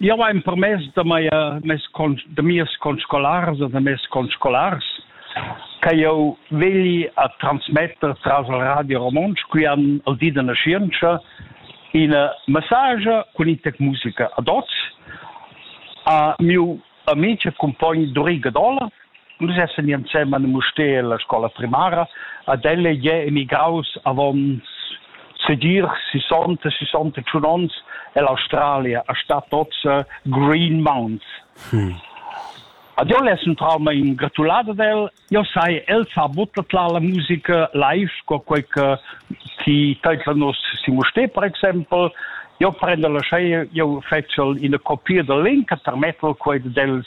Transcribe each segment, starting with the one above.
Jau hai empermess da, mia, mes con, da mias conscolars e da mes conscolars che jau vegli a transmetter tras il Radio Romontsch, qui han al di da nascienza, ina massage cun in tec musica ad oz. A miu amic e cumpogn Duri Gadola, Nus essan i ensemen a Mustér alla scola primara. Ad ella ei emigraus avon sedir 60, 61 onns ell'Australia, a Stadt Otze, Green Mounds. Hm. Ad io l'es un trauma in gratulada del, io sai, el sa buttat la la musica live, co quei che ti teitla nos Simosté, per exempel, io prendo la scea, io fetcio ina copia del link, termettel quei dels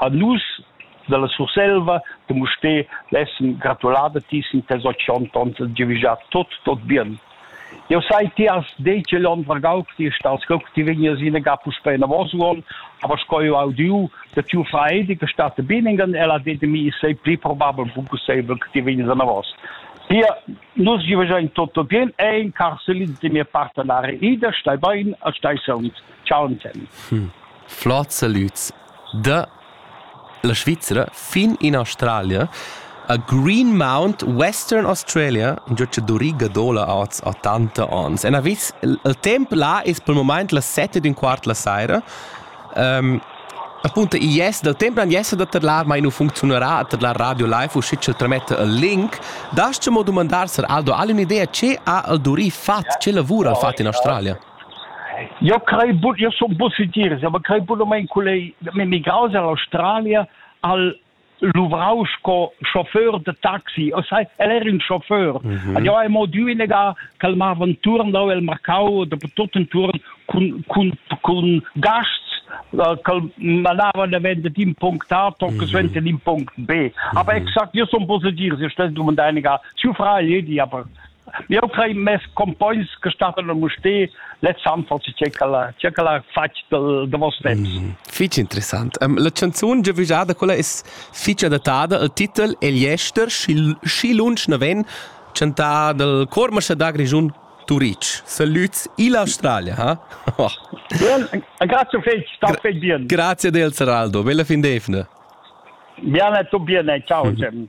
ha nus dalla Surselva de Mustér lessen gratulada ti sin tes otg onns e giavischar tut tot bien. Jeu sai, ti has detg igl onn vargau che ti stas co che ti vegnias ina ga puspei enavos uonn, aber sco jeu ha udiu da tiu Freidi che stat a Billingen, el ha detto mi sei pli probabel pusseivel che ti vegnias enavos. Hier, nus giavischein tot tot bien e in carselin de mia partenare ida, stai bein e stai sauns. Ciao, Anselm. Hm. Flot salüts da la Svizra fin in Australia a Greenmount, Western Australia, un giocadori gadola oz a tanta ons. En avis, il temp là es pel moment las 7 d'un quart la saira. Um, appunto yes, dal temp nan yes da tadlar mai nu funcziunerà a tadlar Radio Live uschi ch'el trametta il link. Da's mo dumandar Sir Aldo, ha un'idea ce ha il Duri fat, ce lavura al fat in Australia? Eu crei bun, eu sun bun sitiers, ma crei bunamaing cul ei m'emigraus dall'Australia al luvrau sco chauffeur de taxi. O sai, el era un chauffeur. Mm -hmm. Ad eu ai mo diu inegar ch'el mava entuorn dau el marcau da tot entuorn cun cun cun gasts äh, che manavano davent d'un punct A, tot che suente d'un punct B. Aber exakt, io sono positivo, io stessi domandando, siu frà gli di, aber Jau crei mes compogns che stattan a Mustér lez han forse c'è quella c'è quella fatg del de vos temps. Mm, fitg interessant. Um, la canzun giavischada quella es fitg adattada al titel El jester schi lunsch na ven chantà dal Cormascha da Grischun Turic. Salüts illa Australia, ha? Oh. Bien, grazie fetg, sta fetg bien. Grazie del Saraldo, bella fin d'efna. Bene, tu bene, ciao Jim.